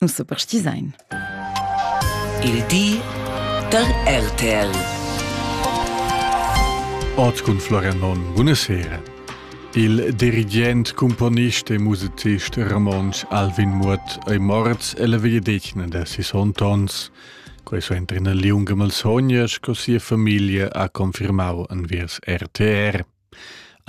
Nus superstisein. Il di da RTL. Ort cun Florian Monn, buna sera. Il dirigent, componist e musicist romontsch Alvin Muot ei morts ella vegliadetgna da sis ontons. Questo entra in liunga malsogna, sco sia famiglia ha confirmau enviers RTR.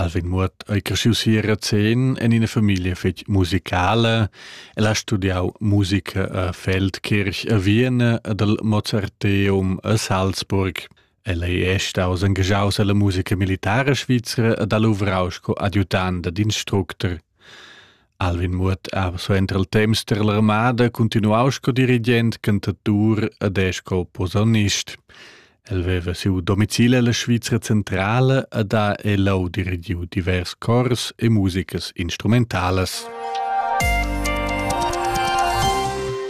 Alvin Muot ei cresciu si a Razén en ina famiglia fetg musicala. El ha studiau musica a Feldkirch a Vienna ed al Mozarteum a Salzburg. El ei è staus engaschaus alla musica militara svizra ed ha luvrau sco adjutant ed instructor. Alvin Muot ha suenter il temps tar l'armada cuntinuau sco dirigent cantatur ed è sco posaunist. El veva siu domicil ella Svizra centrala ed ha elau dirigiu divers cors e musicas instrumentalas.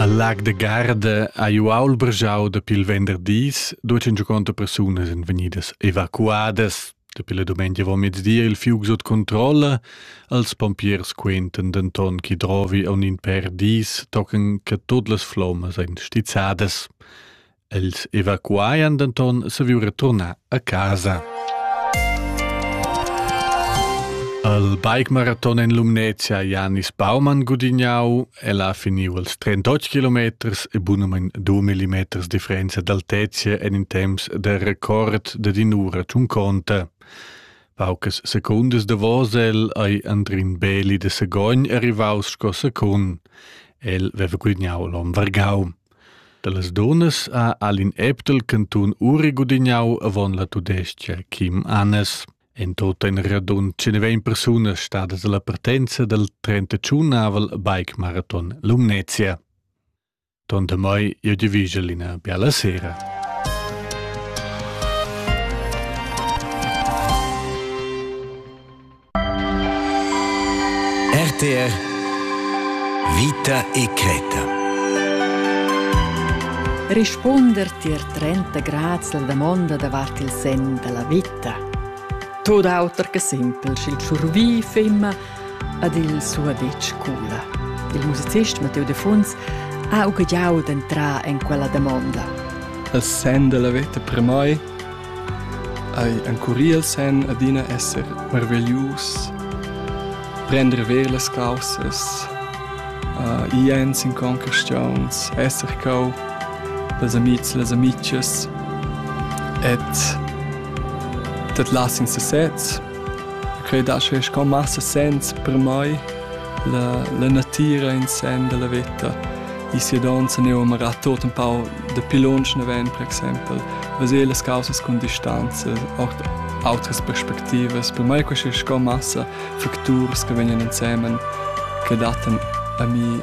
Al Lag de Garda ha ju aul brgiau dapi il venderdis duecin giuconta persunas en vegnidas evacuadas. Dapi la dumengia va mezdi il fiug sut controlla, als pompiers quentan denton che drovi aun in per dis tocan che tut las flommas ein stizzadas. Els evacuaian denton saviu returnar a casa. Al bike maraton en Lumnezia Janis Baumann gudignau Ella ha finiu els 38 kilometers e bunamein 2 millimeters differenza d'altezia en in temps de record de dinura tschunconta. Paucas secundas davos el ei Andrin Beli de Segogn arrivaus sco secund. El veva gudignau l'on vargau. Dallas dunas ha Alin Eptel cantun uri gudignau avon la tudestia Kim Annes. En tot in radund 120 persunas stadas alla partenza dal 35-avel bike marathon Lumnezia. Ton demai jeu di vigel ina biala sera. RTR Vita e creta. Rispunder tier 30 grads la damonda davart il sen dalla vita vita. Tot auter che simpel, sch'il tschurvi femma ad il suo detg cula. Il musicist Matteo De Funz ha ugagliau d'entrar en quella domanda. Essendo la veta per mai, hai encurì sen adina esser meraviglius, prendere ver las causas, uh, jens in conquestiuns, esser cau las amids e las amichas ed dat las in sesez. Quei dà sche sco massa sens per mai la, la natira in sen della veta. I sia donza ne ho marat tot un pau de pilonchen ven, per exempel, vaser las causas con distanza, auch outras perspectivas. Per mai questa sco massa facturs che vegnan insemen che datan a mi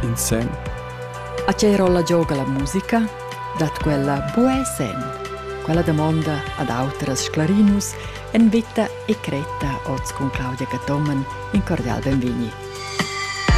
in sen. A che rolla gioga la musica? Dat quella buca senn? Quella damonda ad autras sclarinus en veta e cretta oz cun Claudia Cathomen in cordial benvegni.